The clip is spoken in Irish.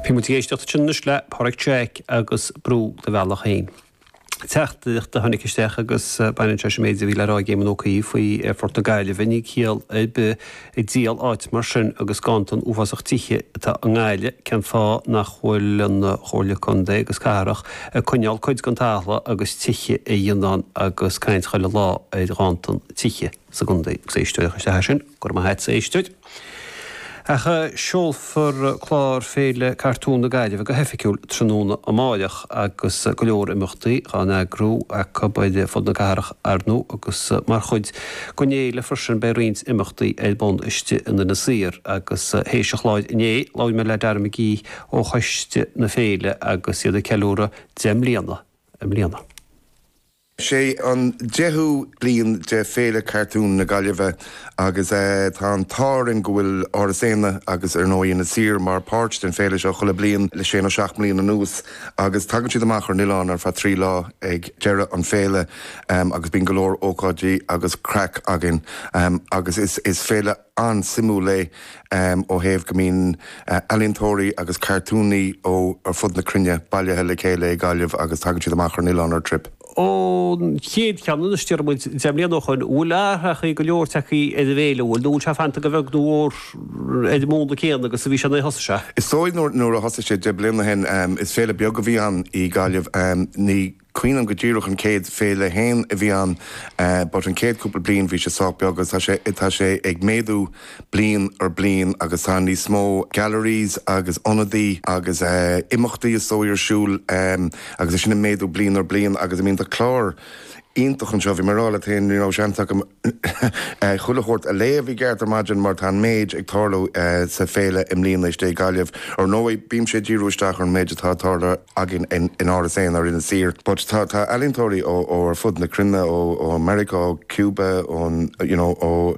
Bhí muid ag éisteacht ansin anois le Pádraig Jack agus Brúigh do Bhealach Féin. Teachtaireacht a tháinig isteach agus baineann sé leis an méid a bhí le rá ag Éamon Ó Cuív faoi Phort na Gaillimhe, níl ciall ar bith ag díol áit mar sin agus ganntan uafásach tithe atá i nGaillimh, cén fáth nach bhfuil an Chomhairle Contae agus Cathrach ag coinneáil cuid den talamh agus tithe a dhéanamh ann agus caint chuile lá ar ghanntan tithe. sa gContae. Is éisteoir i gCois Fharraige é sin, go raibh maith agat as éisteacht. Ach seolfar clár Féile Cartún na Gaillimhe go hoifigiúil tráthnóna amáireach agus go leor imeachtaí á n-eagrú acu ar fud na cathrach arnú agus mar chuid den fhéile freisin beidh roinnt imeachtaí ar bun istigh in Inis Oírr agus théis an chláir inné labhair mé le Dara McGee ó choiste na féile agus iad ag ceiliúradh deich mbliana i mbliana. Sé an deichiú bliain de Féile Cartún na Gaillimhe agus tá an t-ádh orainn go bhfuil Áras Éanna agus ar ndóigh Inis Oírr mar páirt den féile seo chuile bliain le sé nó seacht mbliain anuas agus tagann siad amach ar an oileán ar feadh trí lá ag deireadh an féile agus bíonn go leor ócáidí agus craic againn agus is féile an-suimiúil é ó thaobh go mbíonn ealaíontóirí agus cartúnaithe ó ar fud na cruinne bailithe le chéile i gGaillimh agus tagann siad amach ar an oileán ar trip. Ón chéad cheann anois, deir muid, deich mbliana ó shoin, bhfuil athrú go leor tagtha ar an bhféile, bhfuil, nó bhfuil sé fanta go bheag nó mhór ar an múnla céanna agus a bhí sé nuair a thosaigh sé? Is dóigh nuair a thosaigh sé deich mbliana ó shin, is féile beag a bhí ann i gGaillimh. Ní. cuimhin liom go díreach an céad féile féin a bhí ann but an chéad cúpla bliain bhí sé sách beag agus tá sé ag méadú bliain ar bliain agus tá níos mó galleries agus ionadaí agus imeachtaí is dóigh ar siúl agus é sin ag méadú bliain ar bliain agus I mean tá clár iontach anseo bhí mé a' rá leat fhéin ní raibh seans agam Chuile shórt a léamh i gceart ar maidin mar tá an méid ag tarlú sa féile i mbliana istigh i gGaillimh. Ar ndóigh, bímse ag díriú isteach ar an méid atá ag tarlú againn in Áras Éanna ar Inis Oírr but tá ealaíontóirí ó ar fud na cruinne, ó Meiriceá, ó Cuba, ón, you know, ó.